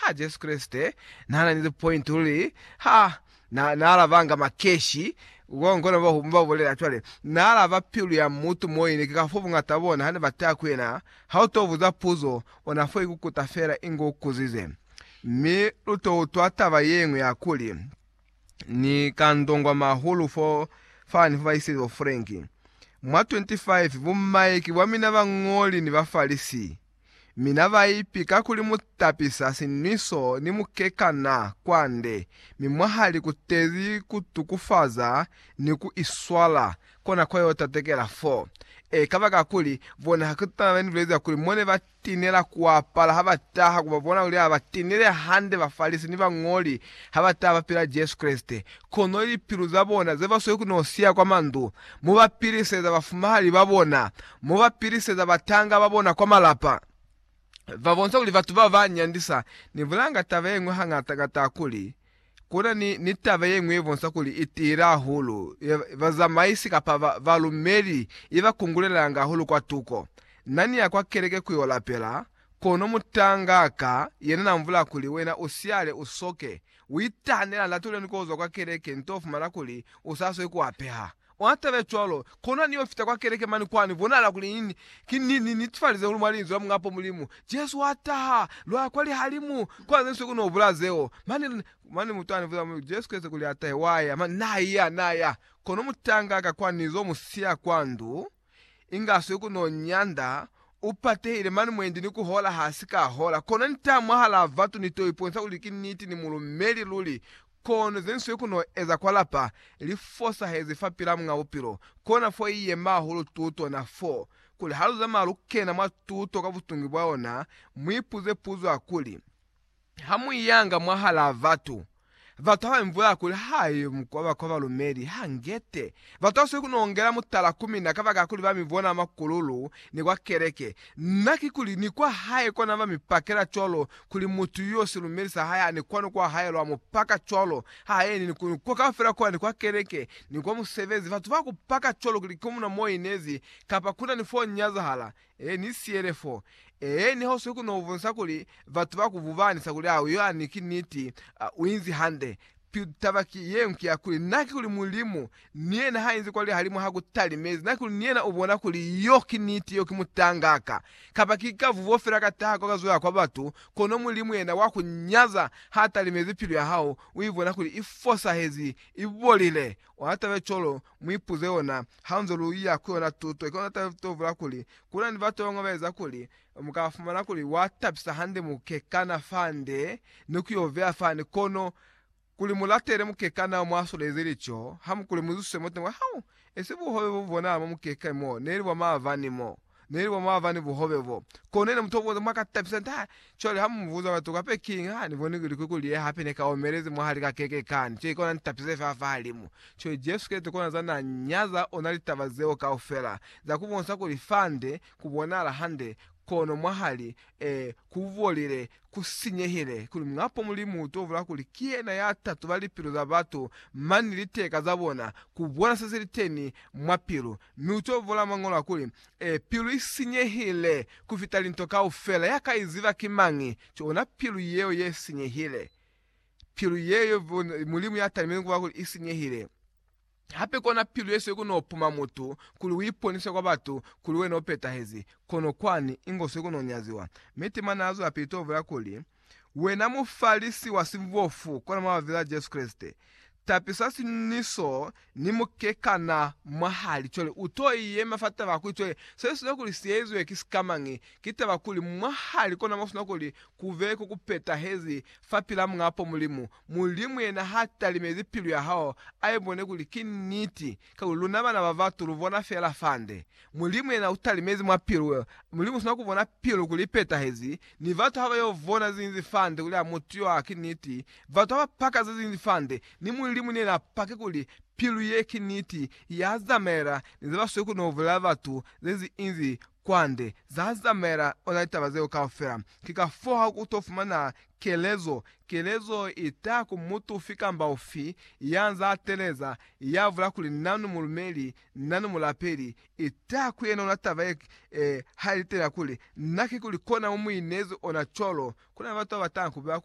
Ha Jesu Kreste na na ni li point luli ha na, na alabanga makeshi, ko kona ba, ba bulela cwale, na alaba pilu ya mutu moyini, ki kafa bungata bona ha ne ba ta ku yena, ha u to buza puzo, o na fo ikukuta fela inge u kuzize. Mi lu to utwa taba yeñwi ya kuli, Ni ka ndongwama hahulu fo fani fo ba iseli bo Frank. Mwa 25, bu Mike bwa mina bañoli ni ba Farisii, mi na ba ipi ka kuli mu tapisa sinwiso ni mukekana kwande, mi mwa ha likutezi ku tukufaza ni ku iswala, kona kwa yo tatekela fo. E kaba kakuli bona ha kutana ba ni bulezi kuli mo ne ba tinela kuapala ha ba taha ku ba bona kuli ha ba tinile hande, Bafalisi ni bañoli ha ba taha ba pila Jesu Kreste, kono lipilu za bona ze ba sweli ku no siya kwa mandu, mu ba piliseza bafumahali ba bona Mo ba piliseza batanga ba bona kwa malapa, ba bonisa kuli batu bao ba nyandisa ni bulanga. Taba ye ñwi hañata ka taha kuli, ku na ni, ni taba ye ñwi ye bonisa kuli i tiile hahulu ye bazamaisi kapa ba, balumeli i ba kungulelanga hahulu kwa tuko. Na ni ya kwa keleke ku yo lapela, kono mutanga ka yena na mbula kuli, Wena u siale, u soke, u itahanela, ni latuhile ni ku zwa kwa keleke, nto fumana kuli u sa swe ku apeha. Mwa taba ya cwalo, kona ni yo fita kwa keleke mane kwani bonahala kuli ni, ki, ni, ni netifalize kuli mwa Linzwi la Muñapo Mulimu, Jesu wa taha, lwa ya kwa Lihalimu, kwa ze nsuku ni ho bula zeo. Mane, mane mutu ani buza muli, Jesu Kreste kuli atahe, wa ya. Mane Na ya, Na ya. Kono mutanga ka kwani ni zo mu siya kwa ndu. Inga swe ku no nyanda, u patehile mani mwendi ni ku hola ha si ka hola, kono nta mwahalaa batu ni to iponisa kuli ki niti ni mulumeli luli, kono ze nswe ku no eza kwa lapa li fosahezi fapilaa Muñ'a Bupilo, kona fo i yema hahulu tuto na fo, kuli ha lu zamaya lu kena mwa tuto ka butungwi bwa yona, mu ipuze puzo ya kuli, Ha mu yanga mwahalaa batu, batu ha ba mi bulaya kuli ha yo mu koba kwa balumeli, ha ngete. Batu ba swaneli ku nongela mutala ku mina kabakala kuli ba mi bona makululu ni kwa keleke. Na ki kuli ni kwa hae kona ba mi pakela cwalo kuli mutu yo silumeli sa hae ha ni kwani kwa hae lwa mu paka cwalo. Ha yeni ni ku ni kwa kaufela kwa ni kwa keleke ni kwa musebezi. Batu ba ku paka cwalo kuli ki muna mo inezi kapa kuna ni fo nyazahala Ee, ni siyele fo. Ee, ni hoswi ku no bonisa kuli batu ba ku bubanisa kuli hao yani ki niti. A, u inzi hande. Pitu taba ki yeo, ki ya kuli, na ki kuli Mulimu, ni yena ha inzi kwa lihalimu ha ku talimezi, na ki kuli ni yena u bona kuli yo ki niti, yo ki mutanga ka, kapa ki ka vubo fela ka taha kwa ka zwela kwa batu, kono Mulimu yena wa ku nyaza, ha talimezi pilu ya hao, u i bona kuli i fosahezi, i bolile. Ona taba ye cwalo, Mu ipuze yona hanze lu ya ku yona tuto. Ki yona tavula kuli, kuna ni batu babañwi ba eza kuli mu ka fumana kuli wa tabisa hande mukekana fande ni ku yo beya fani. Kono kuli mu latele mukekana yo mwa solezi lico, ha mu kuli mu zususe moteni wa hao. Esi buhove bo bu bonahala mwa mukekani mo, neli bwa maavani mo. Neli mwa mava ni buhobe bo. Kono yena mutoboza mwa ka tapisa nta. Cwale ha mu buza batu kape kiñi, ha ni boni kuli ku kulie hape ne ka omelezi mwahali ka keke kani. Cwale kona ni tapise fela fahalimu. Cwale Jesu Kreste kona za na nyaza ona litaba zeo kaufela, za ku bonisa kuli fande ku bonahala hande, kono mwahali, ee, ku bolile, ku sinyehile, kuli Muñapo Mulimu u to bula kuli ki yena ya tatuba lipilu za batu mani ni liteka za bona, ku bona se si li teni mwa pilu. Mi u to vula Mañolo a kuli, E, pilu i sinyehile ku fita linto kaufela, ya ka i ziba ki mañi? Ki ona pilu yeo ye sinyehile. Pilu yeo Mulimu ya talimile ku ba kuli i sinyehile. Hape kona pilu ye siyo ku no puma mutu, kuli u iponise kwa batu kuli wena u petahezi, kono kwani, ingo siyo ku no nyaziwa. Mi Tima na zwelapili to vula kuli, Wena mufalisi wa sibofu, kona mwa Vila ya Jesu Kreste, tapisa siñwi so ni mukekana mwahali cwale u to yema fa taba kuli cwale se sina kuli si ezwe ki sikamañi, ki taba kuli mwahali kona mo sina kuli kube ko ku petahezi fa pila Muñ'a po Mulimu. Mulimu yena ha talimezi pilu ya hao, a ibone kuli ki niti, Kakuli luna bana ba batu lu bona fela fande. Mulimu yena u talimezi mwa pilu. Mulimu usina ku bona pilu kuli i petahezi, ni batu ha ba yo bona ze ñinzi fande kuli a mutu yo a ki niti. Batu ha ba paka ze ñinzi fande, ni Mulimu ni yena a pake kuli pilu ye ki niti, ya zamaela ni ze ba sweli ku no bulela batu ze ñinzi inzi kwande za zamaela ona litaba zeo kaufela. Ki ka fo ha ku to fumana kelezo, kelezo i taha ku mutu ufi kamba ufi ya nza a teleza, ya bula kuli, Nanu mulumeli, nanu mulapeli. I taha ku yena ona taba ye, ha i litelela kuli, Na ki kuli kona mu mu inezi ona cwalo. Kuna ni batu ba ba taha ku bula kuli,